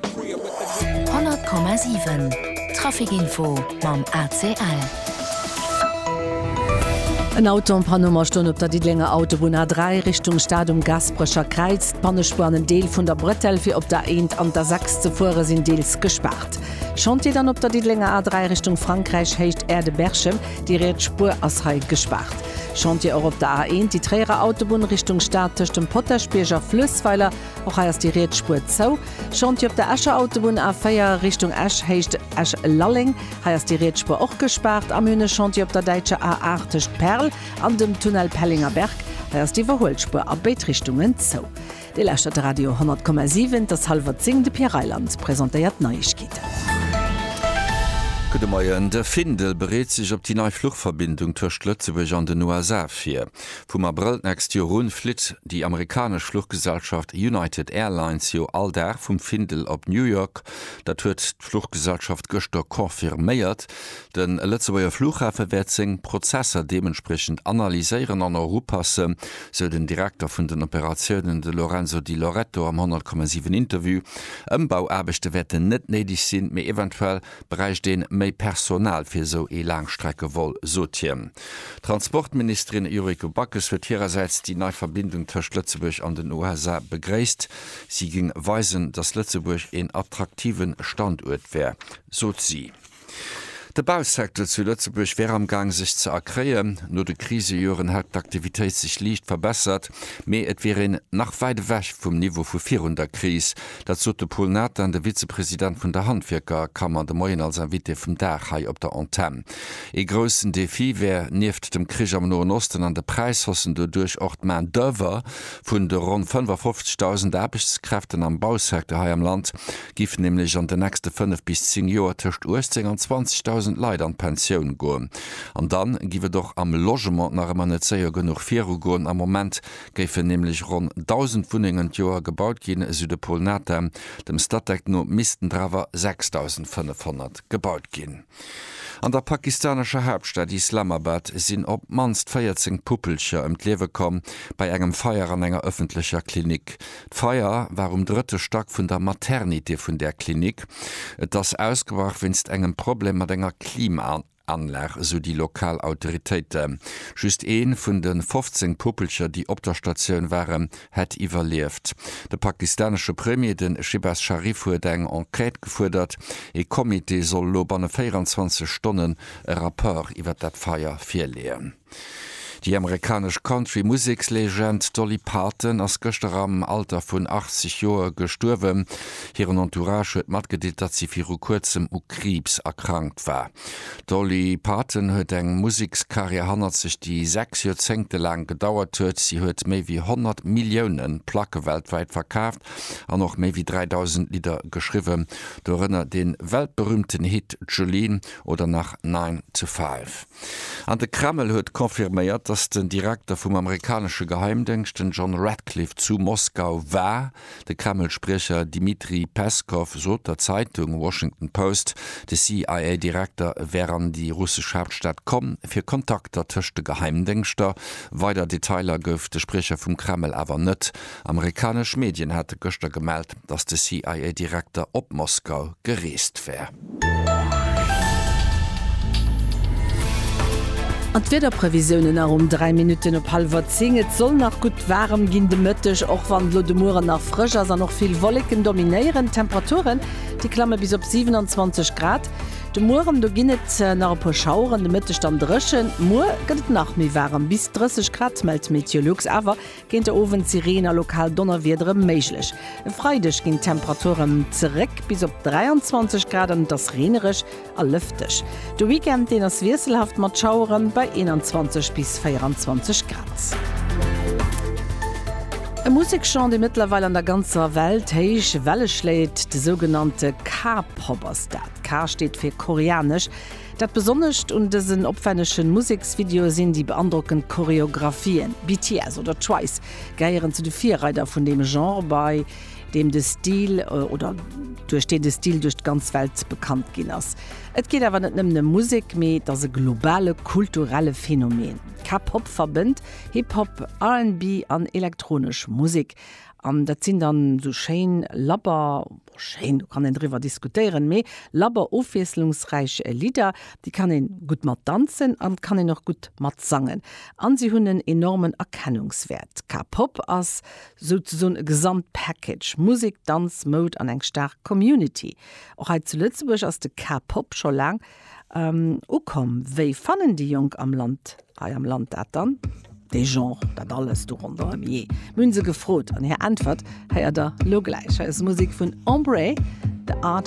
100,7 Traficinfo mam ACL. En Auto an Panne am Astoen op der Diddelenger Autobunn A3 Richtung Stad um Gaasperecher Kräiz. D'Pannespuer an en Deel vun der Bretelle fir op der Eent an der Sechs ze fuere sinn deels gespaart. Chantier dann op der Diddelenger A3 Richtung Frankräich, Héicht Aire de Berchem. Déi riets Spuer ass hei gespaart. Chantier och op der A1, déi Tréierer Autobunn Richtung Stad tëscht dem Potaschbierg a Fluessweiler. Och hei ass déi riets Spuer zou. Chantier op der Escher Autobunn A4 Richtung Esch Héicht Esch-Lalleng. Hei ass déi riets Spuer och gespaart. A mir hunn e Chantier op der däitscher A8 tëscht Perl an dem Tunnel Pellinger-Berg. Hei ass d'Iwwerhuelspur a béid Richtungen zou. Dir lauschtert de Radio 10,7. Et ass hallwer zéng. De Pierre Reyland presentéiert d'Neiegkeeten. Gudde Moien. De Findel bereet sech op déi nei Fluchverbindung tëscht Lëtzebuerg an den USA vir. Vum Abrëll d'nächst Joer un flitt déi amerikanesch Fluchgesellschaft United Airlines jo all Dag vum Findel op New York. Dat huet d'Fluchgesellschaft gëschter confirméiert. De Lëtzebuerger Fluchhafe wäert seng Prozesser deementspriechend analyséieren an erupasse, sou den Direkter vun den Operatiounen, de Lorenzo Di Loreto am 100,7 Interview. Ëmbauaarbechte wäerten net néideg sinn, mee eventuell. bräicht een méi Personal fir esou ee Laangstreckevol, sot hien. D'Transportministerin Yuriko Backes huet hirersäits déi nei Verbindung tëscht Lëtzebuerg an den USA begréisst. Si géing weisen, datt Lëtzebuerg een attraktive Standuert wär, sot si. De Bausecteur zu Lëtzebuerg wär am Gaang sech ze erkréien. No de Krisejoren hätt d'Aktivitéit sech liicht verbessert, mee et wier een nach wäit ewech vum Niveau vu virun der Kris, Dat sot de Pol Nathan, de Vizepresident vun der Handwierkerkammer, de Moien als Invité vum Dag hei op der Antenn. Ee groussen Defi wär nieft dem Krich am Noen Osten an de Präisshaussen doduerch och d'Main d'oeuvre vun de ronn 55.000 Aarbechtskräften am Bausecteur hei am Land. Giffen nämlech an de nächste 5 bis 10 Joer tëscht 18 an 20.000 Leit an d'Pensioun goen. An dann giff et och am Logement nach ëmmer net séier genuch virugoen. Am Moment géifen nämlech ronn 1.000 Wunnengen d'Joer gebaut ginn, esou de Pol Nata. Dem Statec no missten der awer 6.500 gebaut ginn. An der pakistanescher Haaptstad Islamabad sinn op d'mannst 14 Puppelcher ëm d'Liewe komm bei engem Feier an enger ëffentlecher Klinik. D'Feier war um drëtte Stack vun der Maternité vun där Klinik. Et ass ausgebrach wéinst engem Problem mat enger Klimaanlag. Anlag, esou déi lokal Autoritéite. Just ee vun de 15 Puppelcher, déi op der Statioun waren, hätt iwwerlieft. De pakistanesche Premier, de Shehbaz Sharif, huet eng Enquête gefuerdert. Ee Comité soll elo banne 24 Stonnen e Rapport iwwer dat Feier virleeën. Déi amerikanesch Country-Musekslegend Dolly Parton ass gëschter am Alter vun 80 Joer gestuerwen. Hiren Entourage huet matgedeelt, datt si viru kuerzem u Kriibs erkrankt war. D'Dolly Parton huet eng Musekskarriär hannert sech, déi sechs Joerzéngte laang gedauert huet. Si huet méi wéi 100 Millioune Placke weltwäit verkaaft an och méi wéi 3.000 Lidder geschriwwen, dorënner dee weltberüümten Hit Jolene oder nach Nine to Five. An de Kreml huet confirméiert, datt den Direkter vum amerikanesche Geheimdéngscht, den John Ratcliffe, zu Moskau war. De Kreml-Spriecher Dmitri Peskow sot der Zeitung Washington Post, de CIA-Direkter wär an déi russesch Haaptstad komm, fir Kontakter tëscht de Geheimdéngschter. Weider Detailer gouf de Spriecher vum Kreml awer net. Amerikanesch Medien hate gëschter gemellt, datt de CIA-Direkter op Moskau gereest wär. An d'Wiederprevisiounen nach um 3 Minutten op hallwer 10, Et soll nach gutt waarem ginn de Mëtteg, och wann elo de Mueren nach frësch ass an och vill Wolleken dominéieren. D'Temperaturen, déi klamme bis op 27 Grad de Mueren, do ginn et nach e puer Schaueren, de Mëtteg dann dréchen. Muer gëtt et nach méi waarem, bis 30 Grad mellt Meteolux, awer Géint de Owend si Reen a lokal Donnerwiedere méiglech. E Freideg ginn d'Temperaturen zeréck bis op 23 Grad an et ass reenereg a lëfteg. De Weekend, deen ass wiesselhaft mat Schauere bei 21 bis 24 Grad. E Musekgenre, dee mëttlerweil an der ganzer Welt héich Welle schléit, de sougenannte K-Pop ass dat. K steet fir koreanesch. Dat Besonnescht un dësen opwännegen Museksvideoe sinn déi beandrockend Choreographien. BTS oder Twice gehéieren zu de Virreider vun deem Genre, bei deem de Stil, oder duerch deen de Stil duerch d'ganz Welt bekannt ginn ass. Et geet awer net nëmmen ëm Musek, mee et ass e globale kulturelle Phänomen. K-Pop verbënnt Hip-Hop, RnB an elektronesch Musek, an dat sinn dann esou schéin Labber, Schéin, do kann een driwwer diskutéieren, mee labber ofwiesslungsräich Lidder, déi kann een gutt mat danzen an kann een och gutt mat sangen an si hunn en enormen Erkennungswäert. K-Pop ass souzesoen e Gesamtpackage, Musek, Danz, Moud an eng staark Community. Och hei zu Lëtzebuerg ass de K-Pop scho laang Ukomm, wéi fannen déi Jonk am Land, hei am Land dat dann, dee Genre, dat alles do ronderëm, jee? Mir hunn se gefrot an hir Äntwert héiert der elo gläich. Hei ass Musek vun Embrée, The Art.